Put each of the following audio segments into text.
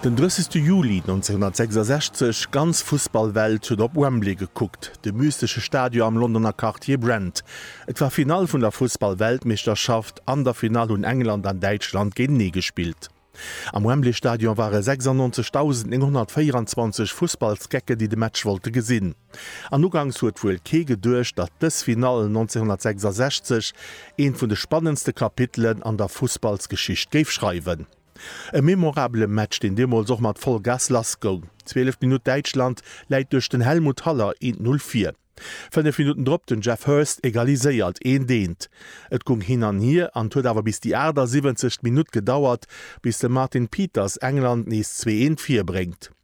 Den 30 Juli 1966, ganz Fussballwelt huet op Wembley gekuckt, de mystesche Stadion am Londoner Quartier Brent. Et war Finall vun der Fussballweltmeeschterschaft, an der Finall hunn England an Däitschland géintenee gespillt. Am Wembley Stadion ware 96.924 Fussballsgecken, déi de Match wollte gesinn. An ugangs huet wuel kee geduecht, datt dës Finall 1966 eent vun de spannendste Kapitelen an der Fussballsgeschicht géif schreiwen. E memorabele Match, deen deemools och mat Vollgas lass goung. Zwielef Minutt, Däitschland läit duerch den Helmut Haller 1, 0 vir. Fënnef Minutten drop den Geoff Hurst egaliséiert 1, 1. Et gung hin an hier an 't huet awer bis déi 78. Minutt gedauert, bis de Martin Peters England nees 2, 1 vir bréngt.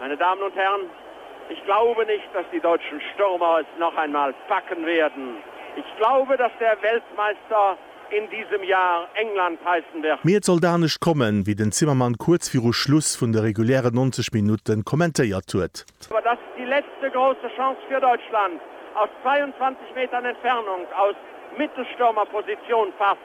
Meine Damen und Herren, ich glaube nicht, dass die deutschen Stürmer es noch einmal packen werden. Ich glaube, dass der Weltmeister in diesem Jahr England heißen wird. Mee et sollt anescht kommen, wéi den Zimmermann kuerz viru Schluss vun de regulären 90 Minutte kommentéiert huet. Aber das ist die letzte große Chance für Deutschland. Aus 22 Metern Entfernung aus Mittelstürmerposition, Pass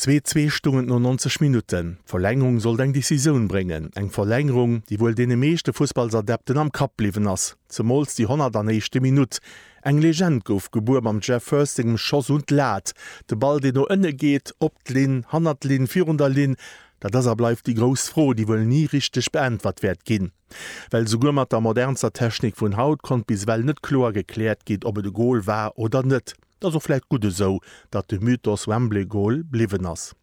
Zwee zwee stung et no 90 Minutten. D'Verlängerung sollt eng Decisioun bréngen, eng Verlängerung, déi wuel deene meeschte Fussballsadepten am Kapp bliwwen ass, zemools déi 101. Minutt. Eng Legend gouf gebuer mam Geoff Hurst sengem Schoss un d'Lat, de Ball, deen no ënne geet, op d'Linn, hannert d'Linn, virun der Linn. Dat ass a bleift déi grouss Fro, déi wuel ni richteg beäntwert wäert ginn, well souguer mat der modernster Technik vun haut konnt bis ewell net kloer gekläert ginn, ob et e Gol war oder net. 't ass och vläit gutt esou, datt de Mythos Wembley Goal bliwwen ass.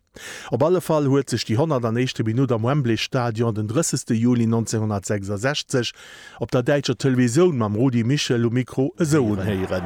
Op alle Fall huet sech déi 101. Minutt am Wembley Stadion den 30. Juli 1966 op der däitscher Televisioun mam Rudi Michel um Mikro esou unhéieren.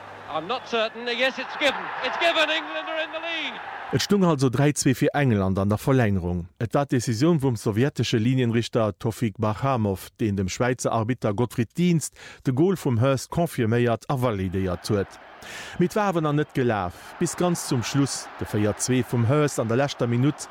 Et stung also 3, 2 fir England an der Verlängerung. Et war d'Decisioun vum sowjetesche Linienrichter Tofik Barhamov, deen dem Schwäizer Arbitter Gottfried Dienst de Gol vum Hurst confirméiert a validéiert huet. Mee et war awer nach net gelaf, bis ganz zum Schluss de 4, 2 vum Hurst an der leschter Minutt.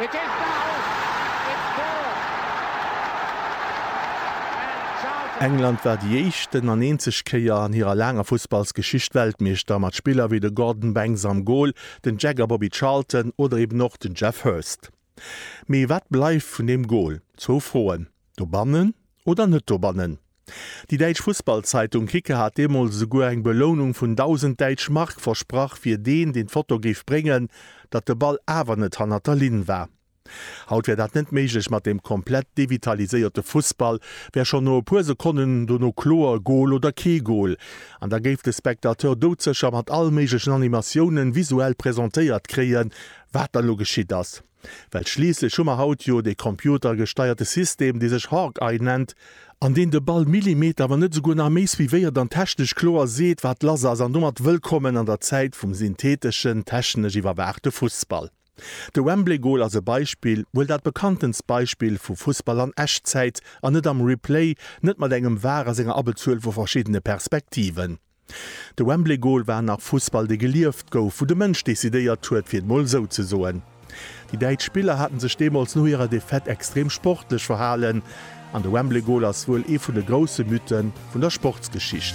It is now! It scores! And Charlton. England war déi éischt en an eenzeg Kéier an hirer laanger Fussballsgeschicht Weltmeeschter, mat Spiller wéi de Gordon Banks am Gol, den Jagger Bobby Charlton oder eben och den Geoff Hurst. Mee wat bleift vun deem Gol? Zwou Froen. Dobannen oder net dobannen? Déi däitsch Fussballzeitung Kicker hat deemools esouguer eng Belounung vun 1.000 däitsch Mark versprach fir deen, deen d'Foto géif bréngen, datt de Ball awer net hannert der Linn war. Haut wär dat net méiglech mat deem komplett devitaliséierte Fussball, wär schonn no e puer Sekonnen dono kloer, Gol oder kee Gol. An da géif de Spectateur doudsécher mat all méiglechen Animatiounen visuell presentéiert kréien, wat dann elo geschitt ass. Well schliisslech hu mer haut jo dee computergesteierte System, dee sech Hawkeye nennt, an deen de Ball Millimeter, wann net esouguer nach méi suivéiert an technesch kloer seet, wat lass ass, an domat wëllkommen an der Zäit vum syntheteschen, technesch iwwerwaachte Fussball. De Wembley-Gol ass e Beispill, wuel dat bekanntenst Beispill vu Fussball an Echtzäit, an net am Replay, net mat engem var a senger Abbezuel vu verschiddene Perspektiven. De Wembley Goal war nach Fussball dee gelieft gouf, wou de Mënsch decidéiert huet fir et mol esou ze soen. Déi däitsch Spiller haten sech deemools no hirer Defaite extrem sportlech verhalen an de Wembley Goal ass wuel ee vun de grousse Mythe vun der Sportsgeschicht.